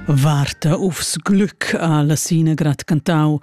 Varta ufs glück a la Sina grad cantau.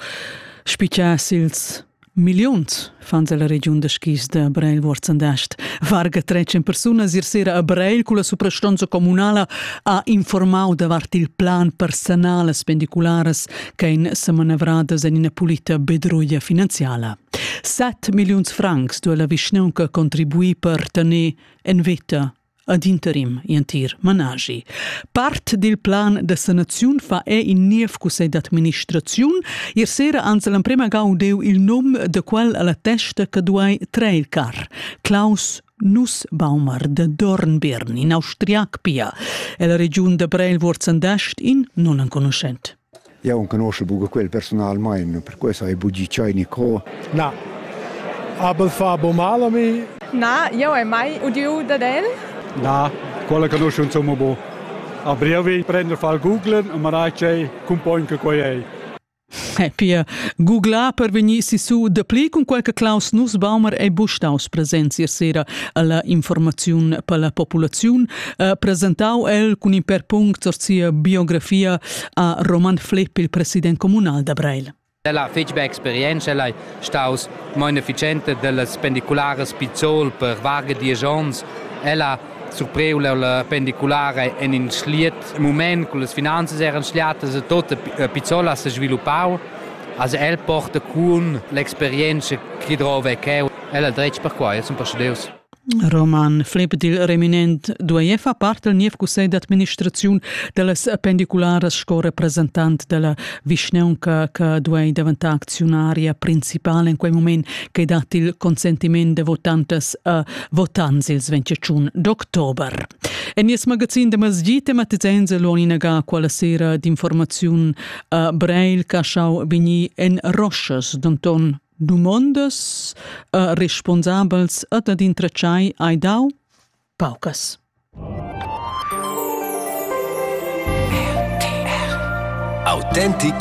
Spiccias ils milliuns fans la regiun da skis da Breil Wurzendast. Varga trec en persunas ir sera a Breil cu la suprastonza comunala ha informau davart il plan personal spendicularas che ein semanevradas en ina pulita bedroia finanziala. 7 milliuns francs duo la vischnaunca contribui per tener en vita ad interim entir manaschi. Part dil plan da sanaziun fa è in niev cussegl d'administraziun. Ier sera ans l'emprema gaudeu il num de quel alla testa che duai trair car. Klaus Nussbaumer de Dornbirn, in austriac pia, ella regiun da Breil Wurzendascht, in non enconuschent. Jau enconuschel buca quel personalmein, perquei sai buca tschei ni co. Na. Aber fa bo mal a mi? Na, jau hai mai udiu dad el. Na, quella conoscun somma bo. A brievi prender fal googlen e marai tgei cumpogn che quei ei. E pia, googlar per vegnir sisu dapli cun quel che Klaus Nussbaumer ei bustaus presents ier sera alla informaziun per la populaziun, eh, presentau el cun in per punct sur sia biografia ha Roman Flepp il president communal da Breil. Ella fetg be experienza, ella è staus mein efficiente dellas pendiculares Pizzol per varga diesch onns. Ella surpriu la pendiculare en in schliet moment, con las finanzas eran schliatas e tot Pizzol ha se sviluppau. Also el porta cun l'experienza che drova è cheu. Ella dretg per quai, zum per Deus. Roman Flip dil reminent duei far part del niev cussegl d'administraziun dallas pendicularas sco representant della vischneunca che duei daventar acziunaria principale in quei moment che dat il consentiment de votantas a votants ils 21 d'october. En nies magazin de masjid tematizein se l'on inaga quella sera d'informaziun a Breil Caschau Bigni en Roschas, Donton dumondas uh, responsabels ed ad intratschai hai dau paucas. Autentic